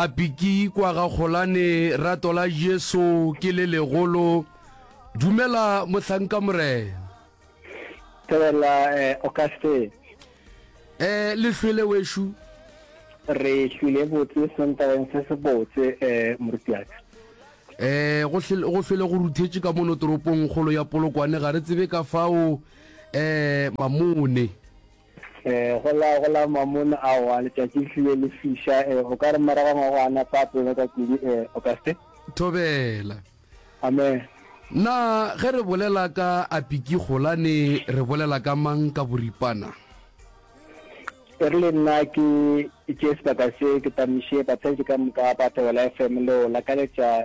A piki kwa ga Kgolane, rato la Jesu ke le legolo. Dumela mohlanka Morena. Thobela eh, Auguste. Eh, le hlwele wešo? Re hlwile botse sentabeng se se botse eh, morutiaka. Eh, go hlwele go ruthetše ka mono toropong kgolo ya Polokwane, ga re tsebe ka fao eh mamone. E, go la, go la mamon, aowa, letšatši le hlile le fiša, e, o ka re morago ga ngwaga a napa a pelo ka kudu, e, o ka se. Thobela. Amen. Na ge re bolela ka Apikigolane re bolela ka mang ka boripana? E rile nna ke tšee sebaka se ke tamiše batsheletše ka moka ba Thobela FM leo la ka letša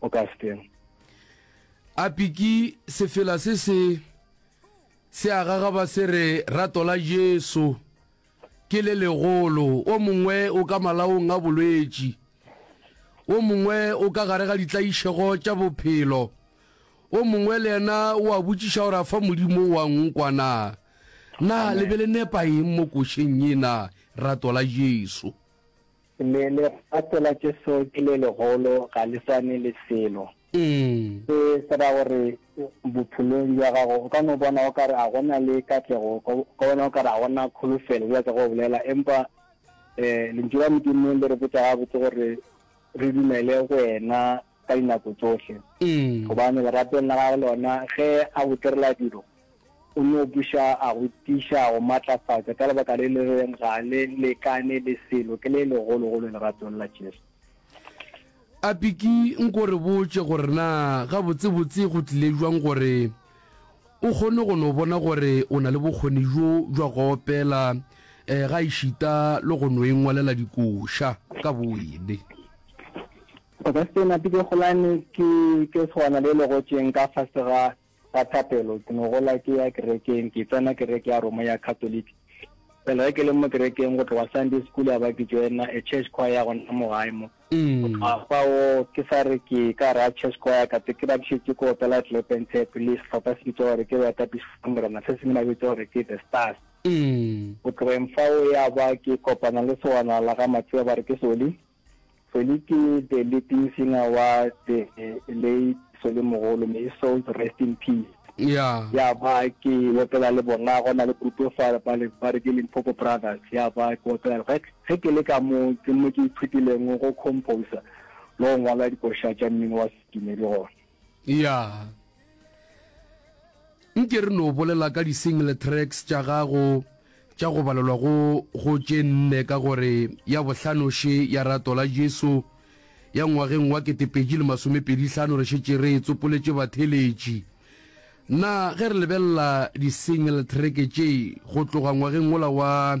o ka steng. Apiki sefela se se se a gagaba se re rato la Jesu ke le legolo. O mongwe o ka malaong a bolwetši, o mongwe o ka gare ga ditlaišego tša bophelo, o mongwe le yena o a botšiša gore a fa Modimo wa nkwa na. Na le be le nepa eng mo košeng ye na rato la Jesu? Le legato la Jesu ke le legolo, ga le swane le selo. Se se ra gore bophelong bja gago o ka no bona o ka re a go na le katlego, o ka bona o ka re a go na kholofelo, bjalo ka ge o bolela. Empa Lentšu la Modimo le re botša gabotse gore re dumele go Yena. ka dinako tsohle, gobane leratong la gagwe lona ge a go direla dilo, o no buša a go tiiša a go matlafatša ka lebaka le le reng ga le lekane le selo ke le legologolo leratong la Jesu. A Piki, nko re botše gore na gabotsebotse go tlile jwang gore o kgone go no bona gore o na le bokgoni bjo bja go opela gaešita le go no ingwalela dikoša ka bowene? Go sa sena pipegolane, ke tšo tshwana le legotšeng ka fase ga ga thapelo. Ke no gola ke ya kerekeng, ke tsena kereke ya Roma ya Catholic. Fela ge ke le mo kerekeng, go tloga Sunday school ya ba ke joina a church choir ya gona mo gae mo. Go tloga fao ke sa re ke ka ra church choir, ka tse ke ba ke šetše ke opela Clap and Tap le sehlopha se bitšwa gore ke Boetapišo ba Morena se sengwe ba bitša gore ke The Stars. Go tlogeng fao ya ba ke kopana le segwanala ga Matsea ba re ke Soli. Feliki the leading singer wa the late Solimogolo, may his souls rest in peace. Ya. Ya ba ke opela le bona gona le group fa ba le ba re ke Limpopo Brothers ya ba ke opela ge ge ke le ka mo ke mo ke ithutileng go composer lo ngwala dikoša tša mmino wa sedumedi gona. ya nke re no bolela ka di-single tracks tša gago tša go balelwa go go tše nne ka gore ya bohlanoši ya rato la jesu ya ngwageng wa ketepeji le masomepedihlano re šetše re e tsopoletše batheletši na ge re lebelela di-single track tše go tloga ngwageng wola wa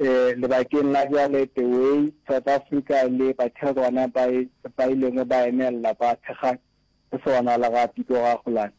Lebakeng la bjale The Way, South Africa le Bathekgwana ba ba ilego ba emelela ba thekga go se bonala ga Piko ga Kgolane,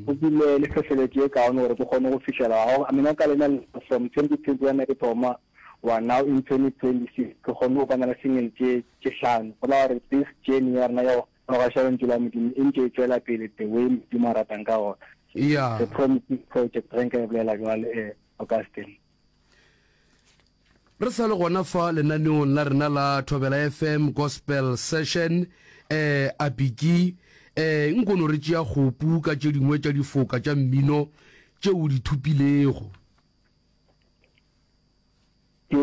go bile le hlohleletšo e kaone gore bo kgone go fihlelega. Ga go amina ka leina la ka from 2021 ke thoma wa now in 2026 ke kgonne go bana le single tše tše hlano, go la gore this journey ya rena ya go gogoša Lentšu la Modimo e ntše e tšwela pele the way Modimo a ratang ka gona. The Promising Project ge nka e bolela bjalo, Augustine. Re sa le gona fa lenaneong la rena la Thobela FM Gospel Session eh Apiki eh nkono re tšea kgopu ka tše dingwe tša difoka tša mmino tše o di thupilego. Ke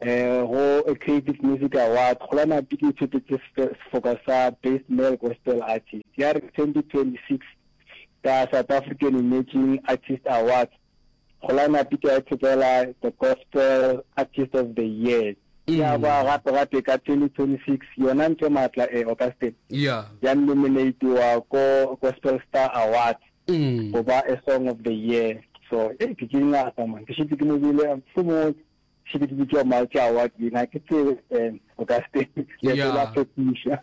Go Creative Music Awards, Kgolwanapi ke ithotetse sefoka sa Best Male Gospel Artist ya 2026 ka South African Emerging Artist Awards. Kgolwanapi ke a ithotela The Gospel Artist of the Year ya ba gape gape ka 2026 yona Ntle Maatla e Augustine ya nominatiwa ko Gospel Star Awards. go ba a song of the year so e ke ke ngata man ke šitse ke mobile fo mo šitse ke bitšwa mao tša wa dina ke tse um o ka se ya tsela fetiša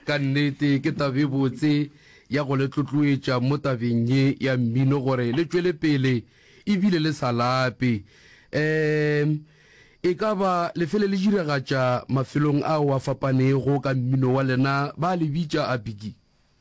ka nnete ke tabe botse ya go le tlotloetša mo tabeng ye ya mmino gore le tšwele pele ebile le sa lape um e ka ba lefele le diragatša mafelong ao a fapanego ka mmino wa lena ba le bitša a bigi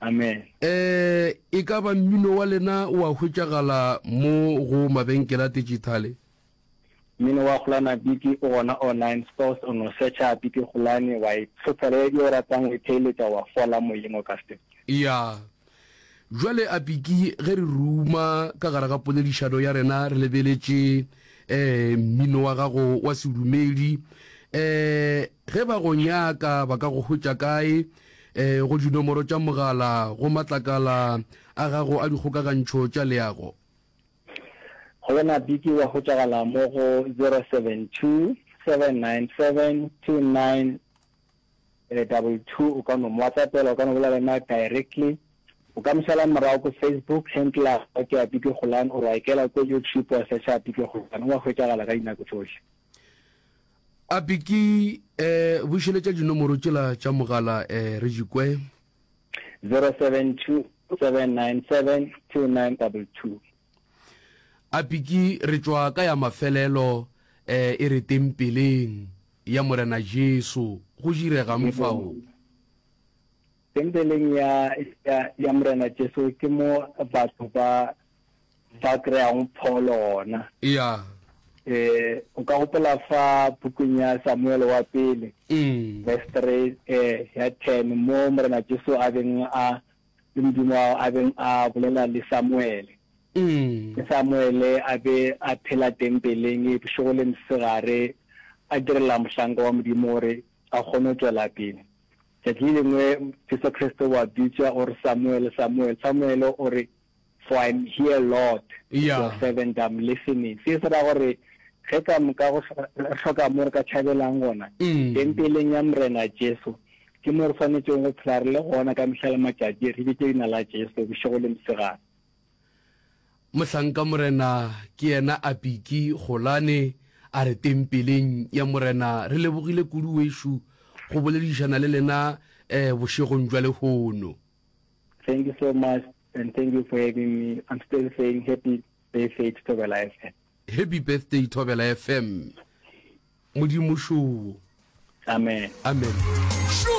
Amen. Ee, e ka ba mmino wa lena o a hwetšagala mo go mabenkele a tejithale? Mmino wa Kgolana Biki o gona online stores, o no search-a Biki Kgolane, wa e tlhophela ye e o ratang, o e theeletša, wa fola moyeng o ka se. Ya. Bjale a Biki, ge re ruma ka gare ga poledišano ya rena re lebeletše ee mmino wa gago wa sedumedi, ee ge ba go nyaka ba ka go hwetša kae? E go dinomoro tša mogala go matlakala a gago a dikgokagantšho tša leago. Go bona Biki wa hwetšagala mo go 0727972922 o ka no mo whatsappela, o ka no bolela le na directly, o ka mo šala morago ko Facebook handle ya gagwe ke ya Biki Kgolane or wa ikela ko YouTube wa searcha Biki Kgolane, o a hwetšagala ka dinako tšohle. Api ke eh, bušeletša dinomoro tšela tša mogala eh, re di kwe. 0727972922. Api ke re tšwa ka ya mafelelo eh, e re tempeleng ya Morena Jesu. Go diregang fao? Tempeleng ya, ya, ya Morena Jesu ke mo batho ba, ba kry-ago pholo gona. Eya. Eh, o ka gopola fa bukung ya Samuele wa pele, Mm. verse 3, eh, ya 10, mo Morena Jesu a beng a, le Modimo wa, a beng a bolela le Samuele. Mm. Ge Samuele a be a phela tempeleng, e bošego le mosegare, a direla mohlanka wa Modimo gore a kgone go tšwela pele. Tšatši le lengwe Jesu Kriste o a bitšwa, o re, Samuel, Samuel. Samuel o re, For I am here, Lord, with your servant, I am listening. Se se ra gore, ge ka moka go hloka mo re ka tšhabelang gona, Tempeleng ya Morena Jesu, ke mo re swanetšego go phela re le gona ka mehla le matšatši, re bitše leina la Jesu bošego le mosegare. Mohlanka Morena ke yena a Piki Golane a re tempeleng ya Morena re lebogile kudu wešo go boledišana le lena eh bošegong jwa lehono. Thank you so much and thank you for having me, I'm still saying happy birthday to Thobela FM. Happy birthday Thobela FM. Modimo šoo. Amen. Amen.